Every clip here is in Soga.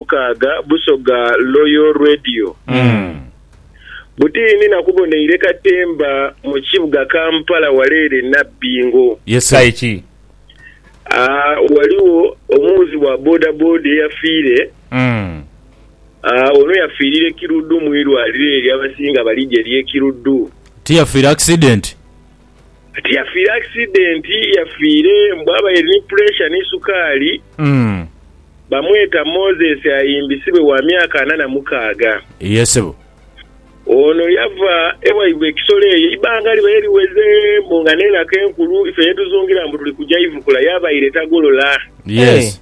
Mukaaga Busoga Loyal Radio butiini na kuboneire katemba mu kibuga Kampala wale ere Nabbingo. Aye ki? Aa Ghaligho omuwuzi wa bodaboda eyafiire. Aa Ono yafiirire Kiruddu mu irwaliro eryo abasinga balija ery'e Kiruddu. Tiyafiire akisidenti? Tiyafiire akisidenti, yafiire mbu abaire ni puresha ni sukaali. Bamweta Moses Ayimbisibwe wa myaka ana na mukaaga. Ye sebo. Ono yava ewaibwe e Kisolo eyo eibanga libaire liweze mbu nga n'enaku enkulu ife yetuzungira mbu tuli kuja ivukula yabaire tagolola. Yes.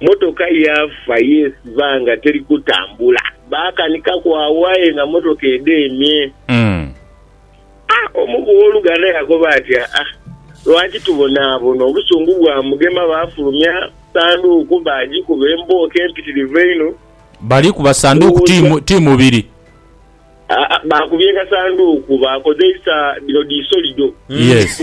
mmotoka yaafa yeesiba nga teri kutambula. Baakanikaku agho aye nga mmotoka edheemye. A Omu ku b'oluganda yakoba ati, Aa, lwaki tubonaabona? Obusungu bwamugema, baafulumya sanduuku baagikuba embooko empitirivu einho. Bali kuba sanduuku ti, ti mubiri? Aa, baakubye kasanduuku, baakozeisa dhino dhi solido. Yes.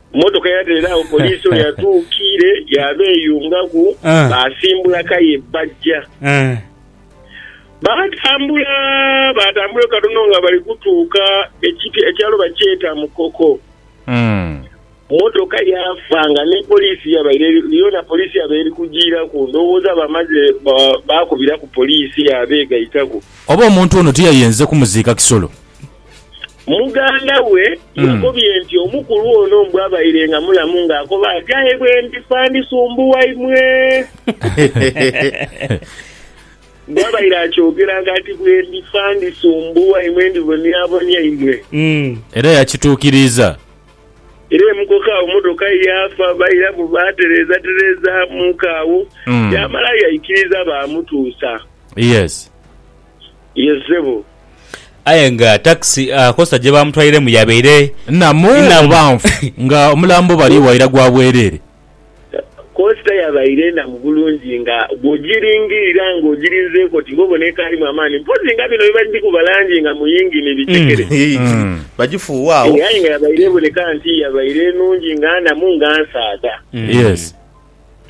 Mmotoka yabeera agho, poliisi oyo atuukiire yaabeeyungaku, baasimbula kaye baja. Baatambula, baatambula katono nga bali kutuuka ekyalo bakyeta Mukoko. Mmotoka yaafa nga ni poliisi yabaire yoona poliisi yabaire eri kugiiraku. Ndowooza bamaze baakubiraku poliisi yaabeegaitaku. Oba omuntu ono tiyayenze kumuziika Kisolo? Muganda we yakobye nti omukulu ono mbu abaire nga mulamu ng'akoba ati, Aye bwendifa ndisumbuwa imwe. Mbu abaire akyogera nga ati, Bwendifa ndisumbuwa imwe, ndibonyabonya imwe. Era yakituukiriza. Era emukoka agho mmotoka ye yaafa, bairamu baatereezatereezaamuku agho, yaamala yaikiriza baamutuusa. Yes. ye zebo. Aye nga takisi Costa gye baamutwairemu yabaire nnamu oba nfu nga omulambo bali waira gwa bwereere. Costa yabaire nnamu bulungi nga bw'ogiringirira nga ogirinzeeku oti ng'obona ekaalimu amaani mpozzi nga bino bye bagikuba langi nga mu yingini bicekere. Aye nga yabaire eboneka nti yabaire nnungi nga nnamu nga nsaadha.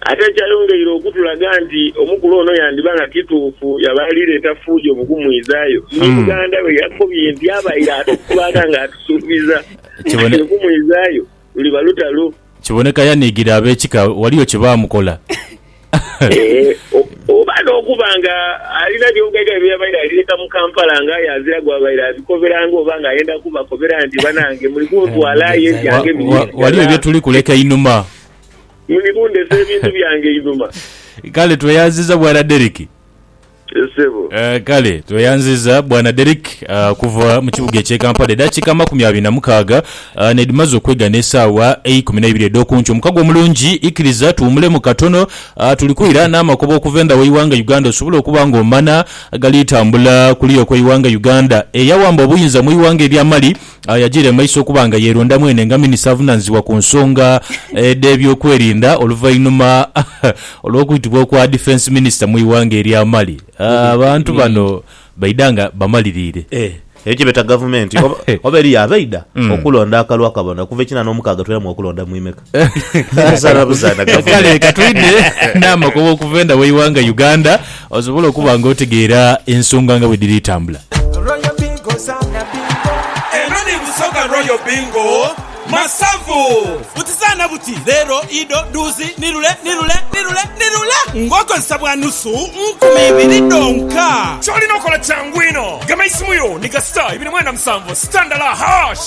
Ate ekyayongeire okutulaga nti omukulu ono yandiba nga kituufu yaba ali leeta fuujo mu kumwidhayo, ni muganda we yakobye nti abaire atukwata nga atusuubiza nti okumwidhayo luliba lutalo. Kiboneka yaniigire ab'ekika waliyo kye baamukola. Oba n'okuba nga alina by'ogairayo bye yabaire ali leeta mu Kampala nga aye azira gwabaire abikoberanga oba nga ayenda kubakobera nti banange muli kuntwala aye ebyange biri eri ghala. Waliyo bye tuli kuleka einhuma. Muli kundhesa ebintu byange einhuma. Kale tweyanziza bwana Derrick. Yes sebo. Eh, kale tweyanziza bwana Derrick ah, okuva mu kibuga ekye Kampala. Edakika amakumi abiri na mukaaga ah, nedhimaze okwega n'esaawa eikumi naibiri edhokunkyo. Omukago omulungi, ikiriza tuwumulemu katono. Ah, tuli kwira n'amakoba okuva endha w'eighanga Uganda osobole okuba nga omana agali tambula kuliya okw'eighanga Uganda. Eyawamba obuyinza mw'eighanga erya Mali Agho yajiira mu maiso okuba nga yeeronda mwene nga minisita avunaanyizibwa ku nsonga edh'ebyokwerinda oluvainhuma olw'okwitibwa okwa Defence Minister mu ighanga erya Mali. Abantu bano baidha nga bamaliriire. Eeh eyo kyebeeta gavumenti oba eriyo abaidha okulonda akalwa kabona okuva ekina nomukaaga twiramu okulonda mwimeka. Buzaana buzaana gavumenti. Kale katwidhe n'amakoba okuva enda w'eighanga Uganda osobole okuba nga otegeera ensonga nga bwe dhiri tambula. Royal Bingo zaana bingo. Eno ni Busoga Royal Bingo Masavu. Buti zaana buti, leero, ido, duuzi, nirule, nirule, nirule, nirule ng'okozesa bwa nusu nkumi ibiri dhonka. Ky'olina okola kyangu inho, gema eisimu yo ni kasita ibiri mwenda musanvu sita ndala, hash.